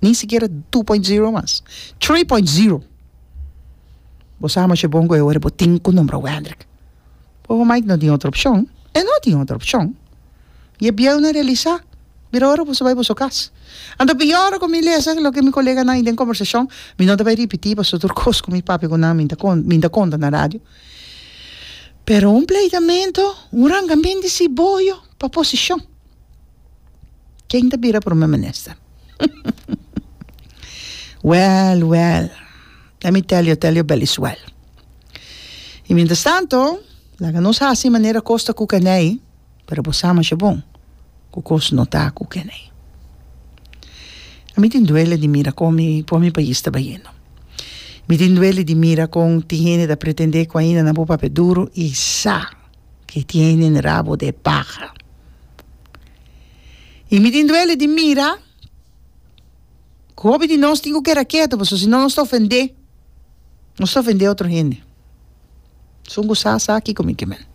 Ni sikiera two point zero mas. Three point zero! Bo sa masha bon ku e ora bo tin ku nombra Wendrick. Bobo Mike no tin otro opshon. E no tin otro opshon. I e bieu na realisa. Mira ora boso bai boso kas. Anto bin ora ku mi lesa loke mi koleganan i den kombersashon, mi no ta bai ripití pasobra tur kos ku mi papia ku nan mi ta konta, mi ta konta na radio. Pero un pleitamentu, un rangamenti si boyo pa posishon. Ken ta bira prome minister? Well, well. Let me tell you, tell you belis well. Y mientras tanto, laga nos hasi manera cos ta cu keney, pero bo sa masha bon cu cos no ta cu keney. A mi tin duele di mira con mi, con mi pais ta bayendo. Mi tin duele di mira con tin hende ta pretende cu ainda nan por papia duro y sa. ki tienen rabo de paha. I mi tin duele di mira ku hopi di nos tin ku keda ketu pasobra si no nos ta ofende, nos ta ofende otro hende. Su ku sa sa kiko mi ke men,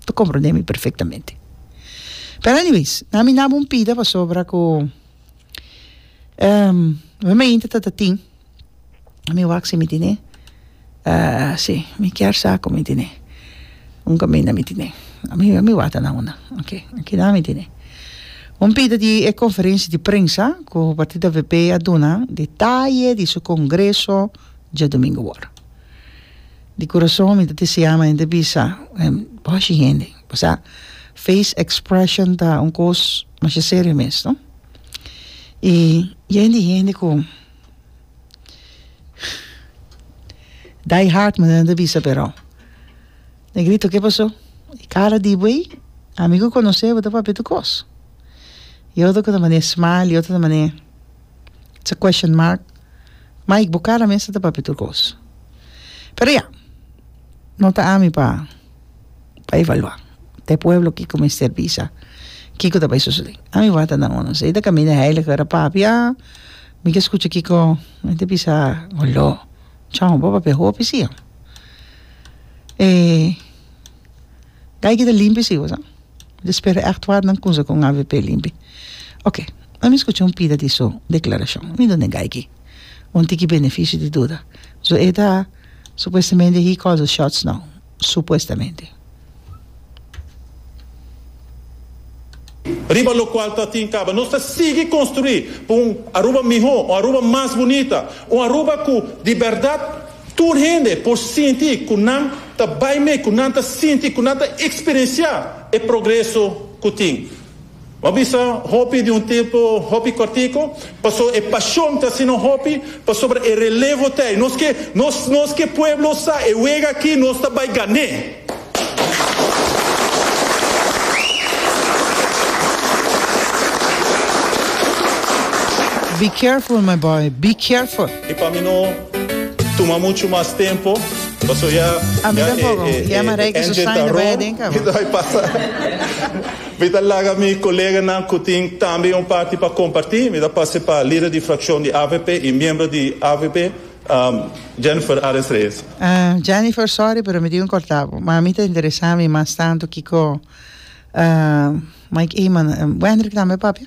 ta komprende mi perfektamente. Pero anyways nan mi nan bo un pida pasobra ku mi mainta tatatin. mi wak si mi tene si mi kier sa ku mi tene un kaminda mi tene ami ami wata nan una oke kinan mi tene un pida di e konferensia di prensa ku partido avp a duna detaye di su kongreso djadumingu wor di kurason mi ta deseá men ta bisa boshi hende pasá feis ekspreshon ta un kos masha serio mes no i yen di hende ku. Die hard manera nan ta bisa pero negrito ke paso e kara di bo ei a mi ku konosé bo ta papia tur kos e otro ta manera smile e otro ta manera sa question mark Mike bo kara mes ta papia tur kos pero ya no ta ami pa pa evaluá ta e pueblo kiko mester bisa kiko ta bai sosodé ami wata na uno sey ta kaminda heiliger a papia mike skucha kiko mi ta bisa oló chao bo papia hopi si e dai kita limpi si bosa mi ta spera echt wata nan kumsa kon avp limpi oke ami skucha un pida di su deklarashon mi done gai ki Un tiki beneficio di duda. So e ta supuestamente he calls the shots now. Supuestamente. Riba locual ta tin caba nos ta sigui construi pa un Aruba miho, un Aruba mas bunita, un Aruba cu di berdad tur hende por sinti cu nan ta bay mee, cu nan ta sinti, cu nan ta experiencia e progreso cu tin. Bo bisa hopi di un tempu hopi kòrtiku, pasobra e pashon ta asina hopi, pasobra e relevo ta ei. Nos ke, nos, nos ke pueblo sa e wega aki nos ta bai gan'é. Be careful my boy, be careful. I pa mi no tuma muchu mas tempu, pasobra ya, ya e, e, e, e engine ta ròn, entonces ai pasa. Mi ta laga mi koleganan ku tin tambe un parti pa kompartí. Mi ta pase pa lider di frakshon di avp i miembro di avp, Jennifer Ares Reyes. Jennifer, sòri pero mi tin ku kòrtá bo, ma mi ta interesá mi mas tantu kiko Mike Eman, Wendrick tambe, papia?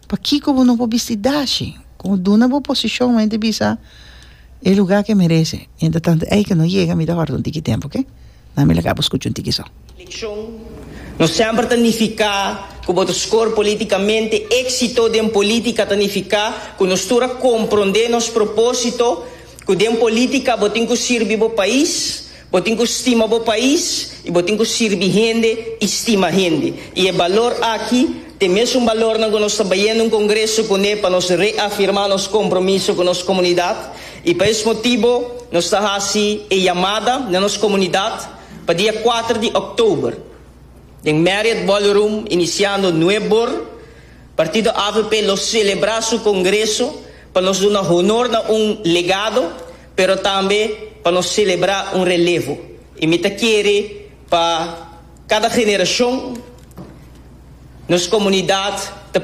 Pakiko bo no por bisti dashi? Como duna bo posicion men ta bisa e lugar que merece. Mientras tanto ey que no yega mi ta horda un tiki tempo oke. Na mi laga bo scucha un tiki so. Eleccion no semper ta nifica cu bo ta score politicamente. Exito den politica ta nifica cu nos tur a comprende nos proposito cu den politica bo tin cu sirbi bo pais. Bo tin cu stima bo pais y bo tin cu sirbi hende y stima hende. Y e balor aki ta e mesun balornan cu nos ta bayendo un congreso cune pa nos reafirma nos compromiso cu nos comunidad y pa es motibo nos ta haci e yamada na nos comunidad pa dia cuater di October den Marriott Ballroom iniciando nue bor Partido avp lo celebra su congreso pa nos duna honor na un legado pero tambe pa nos selebrá un relevo. I mi ta kere pa kada generashon nos komunidat ta.